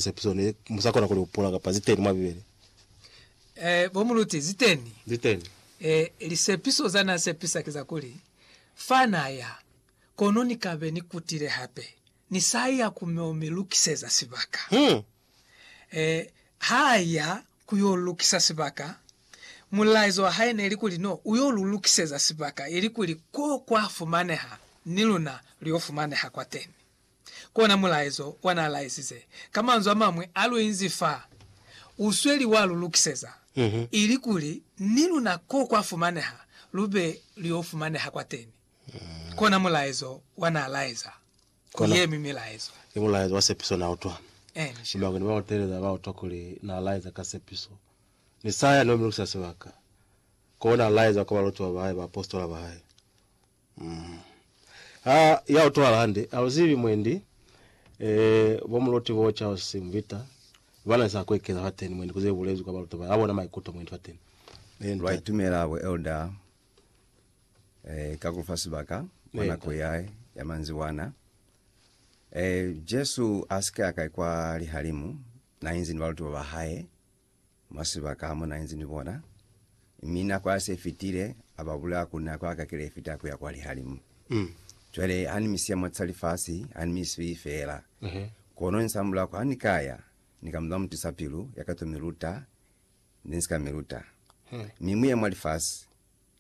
Sepiso ne mu sa kona ku li hupula, kapa zi teni mwa Bibele? Ee, bo muluti, zi teni. Zi teni. Ee, lisepiso za n'a sepisa ki za kuli, Fa n'a ya, kono ni ka be ni kutile hape. Ni sa ya ku m'o mi lukiseza sibaka. Hmm. Ee, ha a ya ku y'o lukisa sibaka, mulaizo wa hae ne li kuli, No, u y'o lu lukiseza sibaka, ilikuli k'o kwa fumaneha, ni luna lu y'o fumaneha kwateni. Kona mulaezo wa n'a laesize. Ka manzwi a mañwi, a lu inzi fa, u sweli wa lu lukiseza, ili kuli ni luna ko kwa fumaneha lu be lu y'o fumaneha kwateni. Kona mulaezo wa n'a laeza ku ye mi milaezo. Ki mulaezo wa sepiso n'a utwa. Ki mañwi ne ba u teeleza? Ba utwa kuli n'a laeza ka sepiso. Ni sa yani ba mi lukiseza sibaka. K'o n'a laeza ka balutiwa ba hae, baapositola ba hae. Ha ya utwala hande, ha uzibi mwendi eh, bo muluti bo Charles Simvita bana ni sa ku ekeza fateni mwendi ku ze bulezwi kwa baluti ba bona maikuto mwendi fateni. Eh, Lwa ntate. itumela bo elder eh, ka ku fa sibaka kwa Eh, nako ntate. ya, ya manzibwana. Eh, Jesu a si ka ya kai kwa lihalimu, na inzi ni baluti ba ba hae. Mwa sibaka ha mu na inzi ni bona, mi nako ya se fitile, a ba bulaya ku nako ya ka kile fita ku ya kwa lihalimu. Cwale ha ni mi siya mwa sa lifasi, ha ni mi swiyi fela. Kono insa mulaho, ha ni ka ya, ni ka muba mutusa pilu ya ka to mi luta, ne ni si ka mi luta. Mi mu ye mwa lifasi,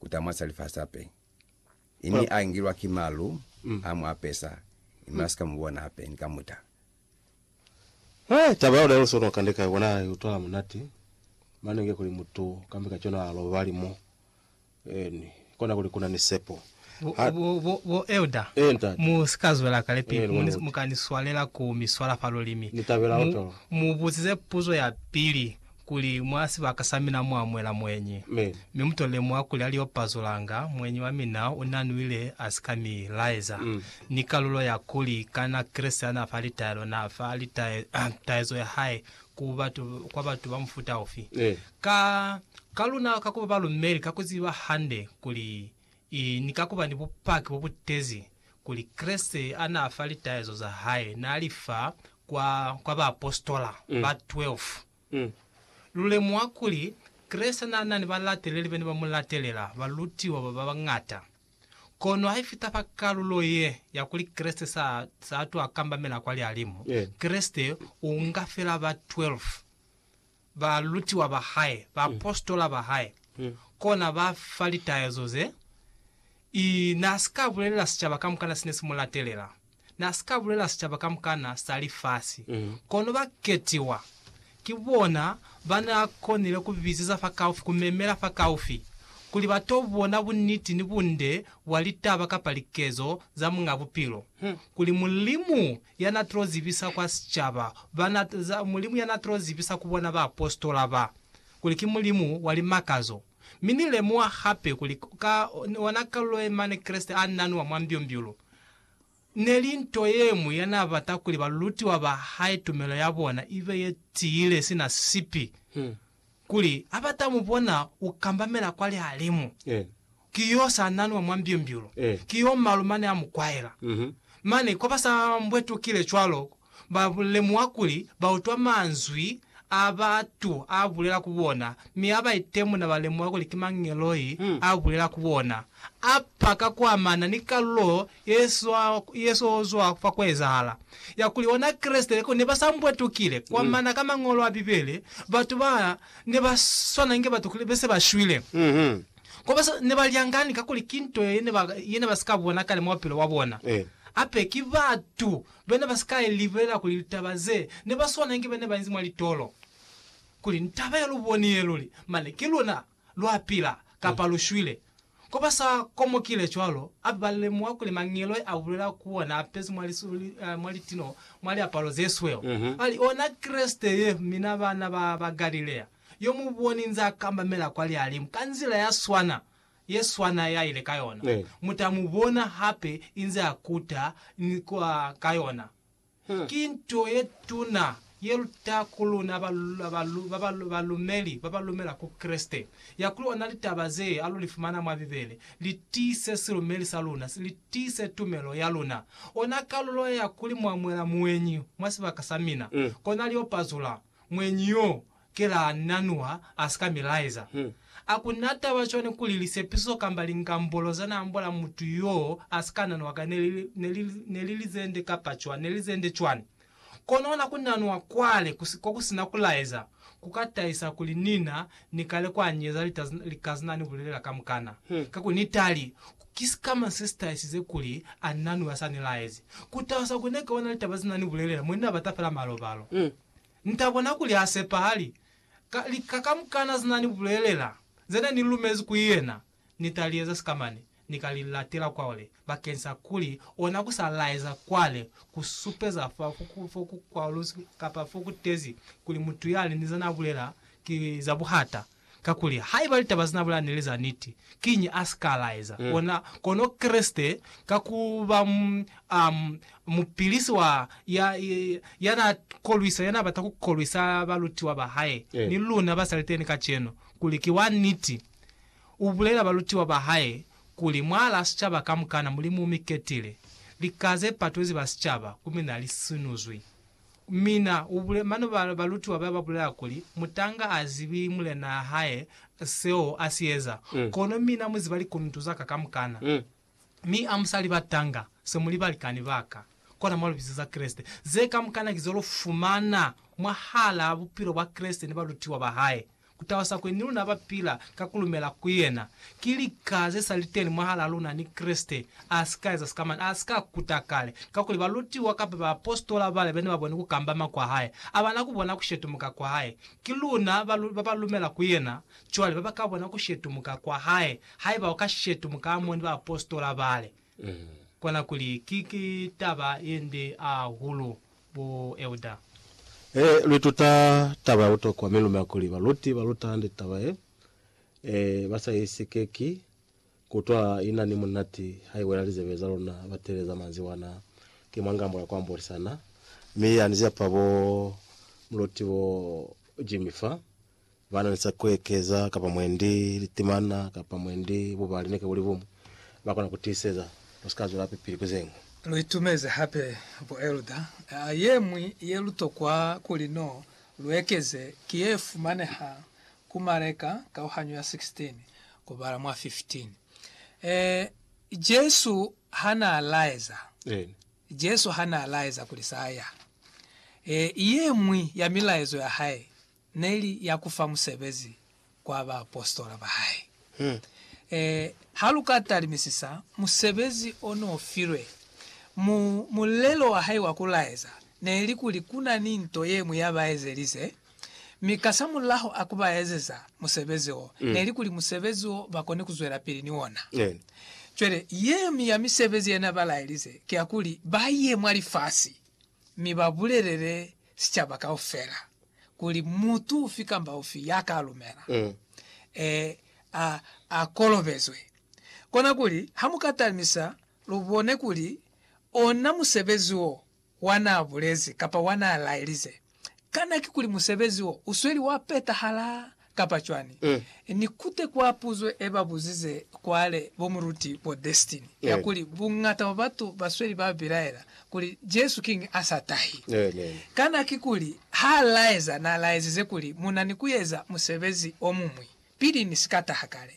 kuta mwa sa lifasi hape. Ini a ngilwa ki malu, mm. a mu apesa, ima sika mu bona hape, ni ka muta. Hey, taba ya udalo sono kande kai bona utwala munati mane nge kuli mutu kambe ka chona a lobali mo eni kona kuli kuna ni sepo. Bo, Ha- bo, bo, bo elder. Eh, ntate. Mu si ka zwela kale pili. Eh, Mu, lumuti. mu ka ni swalela ku mi swala fa lulimi. Ni tabela Mu, oto. mu buzize puzo ya pili, kuli mwa sibaka sa mina mwa mwela mweñi. Amen. Mi mu tolile mwa kuli a li yo pazulanga, mweñi wa mina u na nwile a si ka mi laeza. Mm. Ni kalulo ya kuli, kana Kreste a na fa litaelo, na fa litae, taezo ya hae ku batu, kwa batu ba mufuta ufi? Eh. Ka, ka luna, ka ku ba balumeli, ka ku ziba hande kuli I ni ka ku ba ni bupaki bo bu tezi kuli Kreste ha n'a fa litaezo za hae n'a li fa kwa, kwa baapositola ba 12. Lu lemuha kuli Kreste n'a na ni balateleli ba ne ba mu latelela, balutiwa ba ba ñata. Kono haifita fa kalulo ye ya kuli Kreste s'a, s'a twa kambamela kwa Lialimu, Kreste u nga fela ba 12. balutiwa ba hae, baapositola ba hae, kona ba fa litaezo ze, i, na si ka bulelela sicaba kamukana sine si mu latelela, na si ka bulelela sicaba kamukana sa lifasi, kono ba ketiwa, ki bona ba na konile ku bizeza fa kaufi, ku memela fa kaufi, kuli ba to bona buniti ni bunde bwa litaba kapa likezo za Muñ'a Bupilo, kuli Mulimu ya na tilo zibisa kwa sicaba, ba na, za, Mulimu ya na tilo zibisa ku bona baapositola ba, kuli ki Mulimu wa limakazo. Mi Ni lemuha hape kuli, ka ona kalulo ye mane Kreste a nanwa mwa mbyumbyulu, ne li nto ye ñwi ya na bata kuli balutiwa ba Hae tumelo ya bona ibe ye tiile sina sipi. Kuli ha ba ta mu bona u kambamela kwa lihalimu, ki yo sa nanwa mwa mbyumbyulu, ki yo malu mane a mu kwaela. Mane kwa ba sa mbwetukile cwalo, ba lemuha kuli ba utwa manzwi a batu a bulela ku bona, mi ha ba itemuna ba lemuha kuli ki mangeloi a bulela ku bona. A paka ku amana ni kalulo Yesu o zwa fa ku ezahala ya kuli ona Kreste le kuli ne ba sa mbwetukile. Kwa mana ka Mañolo a Bibele, batu ba ne ba swana inge batu kuli be se ba shwile. Kwa ba ne ba lyangani kakuli ki nto ye ne ba si ka bona kale mwa bupilo bwa bona. Hape ki batu be ne ba si ka libelela kuli litaba ze ne ba swana inge be ne ba inzi mwa litolo, kuli ni taba ye lu boni ye luli, mane ki luna. lwa pila, kapa lu shwile. Ko ba sa komokile cwalo, a ba ba lemuha kuli Mangeloi a bulela ku ona a pezi mwa lisuli, mwa litino, mwa liapalo ze sweu, ba li, Ona Kreste ye, mina bana ba ba Galilea, yo mu boni nz'a kambamela kwa lihalimu ka nzila ya swana ye swana ya ile ka yona, mu ta mu bona hape inze a kuta ni kwa ka yona. Ki nto ye tuna ye luta ku luna balumeli ba ba lumela ku Kreste, ya kuli ona litaba ze alu li fumana mwa Bibele li tiise silumeli sa luna, li tiise tumelo ya luna. Ona kalulo ya kuli mwa mwela muenyi mwa sibaka sa mina, kona lio pazula muenyi yo Kela na Nuha a si ka mi laeza. A ku na taba cwani kuli lisepiso kamba lingambolo za n'a ambola mutu y'o a si ka nanwa ka ne li ne li ne li lizende kapa cwani ne li lizende cwani? Kono ona ku nanwa kwale ku si ko ku si na ku laeza ku ka tahisa kuli ni na ni kale kwa nyeza lita lika ze n'a ni bulelela kamukana. Ka ku ni tali, ki sikamañi se si tahisize kuli a na Nuha sa ni laezi? Ku tahisa kuli ne ka bona litaba ze n'a ni bulelela mwa ni na bata fela malobalo. Nta bona kuli ha sepahali. Ka lika kamukana ze na ni bulelela, ze ne ni lumezi ku yena, Ni ta li eza sikamane, ni ka li latela kwale, bakeng sa kuli ona ku sa laeza kwale, ku supeza fa fo ku kwaluzi kapa fo ku tezi kuli mutu yali ni za na bulela ki za buhata. Kakuli haiba litaba zina bulaya neli za niti, kiñi a si ka laeza ona kono Kreste ka ku ba mupilisi wa ya, ya na kolwisa, ya na bata ku kolwisa balutiwa ba hae? Ni luna ba sa liteni kacenu kuli ki wa niti. U bulela balutiwa ba hae kuli, Mwaalaa sicaba kamukana, Mulimu u mi ketile. Lika ze patwezi ba sicaba, ku mi na li sinuzwi. Mina, ubule, mane ba, balutiwa baya babulela kuli, Mutanga a zibi mulenaa hae seo a si eza, kono mina mu ziba likuntu zaka kamukana. Mi a musali batanga, se muli balikani baka, kona mwa libizo za Kreste. Ze kamukana ki zo lu fumana mwahalaa bupilo bwa Kreste ni balutiwa ba hae, Kutalusa kuli ni luna ba pila ka ku lumela ku yena, ki lika ze sa li teni mwahalaa luna ni Kreste, a si ka eza sikamana, a si ka kuta kale. Kakuli balutiwa kapa baapositola bale be ne ba boni ku kambama kwa hae, a ba na ku bona ku shetumuka kwa hae. Ki luna ba ba lumela ku yena cwale ba ba ka bona ku shetumuka kwa hae, haiba u ka shetumuka amoni baapositola bale. Kona kuli ki ki taba yende ahulu bo Elder. E luituta taba ya butokwa mi lumela kuli baluti ba luta hande taba ye e ba sa i sikeki ku utwa i na ni munati ha i wela lizebe za luna. Ba teeleza manzwi ana, Ki mwa ngambo ya ku ambolisana, mi ya ni zapa bo muluti bo Jimmy fa. Ba na ni sa kuekeza kapa mwendi litimana kapa mwendi bubali neke buli bumu ba kona ku tiiseza lu si ka zwela pili ku ze ñwi. Lu itumezi hape buelda ye ñwi ye lu tokwa kuli no lu ekeze ki ye fumaneha ku Mareka kauhanyo ya 16 kubala mwa 15. Ee, Jesu ha naa laeza, Jesu ha naa laeza kuli sa ya. Ee, ye ñwi ya milaezo ya hae ne li ya ku fa musebezi kwa baapositola ba hae. E, ha lu ka talimisisa musebezi o n'o filwe, mu, mulelo wa hae wa ku laeza ne li kuli ku na ni nto ye ñwi ya ba ezelize, mi kasamulaho a ku ba ezeza musebezi wo, ne li kuli musebezi wo ba koni ku zwelapili ni ona. Cwale, ye ñwi ya misebezi ye n'a ba laelize ki ya kuli ba ye mwa lifasi mi ba bulelele sicaba kaufela, kuli mutu ufi kamba ufi ya ka lumela, e, a, a kolobezwe. Kona kuli, ha mu ka talimisa, lu bone kuli ona musebezi wo wa na bulezi kapa wa na laelize, kana ki kuli musebezi wo u sweli wa petahala kapa cwani, ni kute kwa puzo e ba buzize kwale bo Muluti bo Destin ya kuli bungata bwa batu ba sweli ba bilaela kuli Jesu kiñi a sa tahi. Kana kikuli ha laeza na laezize kuli mu na ni ku eza musebezi o muñwi pili ni si ka taha kale?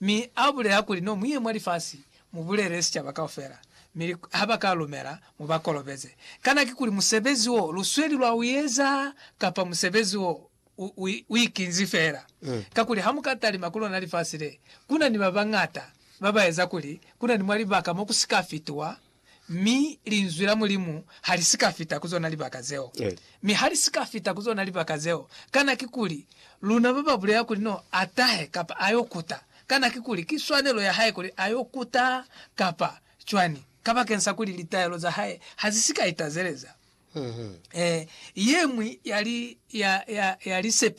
Mi a bulela kuli, No mu ye mwa lifasi, mu bulele sicaba kaufela, mi ha ba ka lumela, mu ba kolobeze. Kana kikuli musebezi wo lu sweli lwa u eza, kapa musebezi wo u ikinzi fela, kakuli ha mu ka talima ku lona lifasi le, ku na ni ba bañata ba ba eza kuli ku na ni mwa libaka mo ku si ka fitiwa, mi Linzwi la Mulimu ha li si ka fita ku zona libaka zeo. Mi ha li si ka fita ku zona libaka zeo, kana kikuli luna ba ba bulela kuli no a tahe kapa a yo kuta? Kana kikuli ki swanelo ya hae kuli a yo kuta kapa cwani, kabakeñsa kuli litaelo za hae ha zi si ka itazeleza? Ee, ye ñwi ya li, ya, ya, ya li se,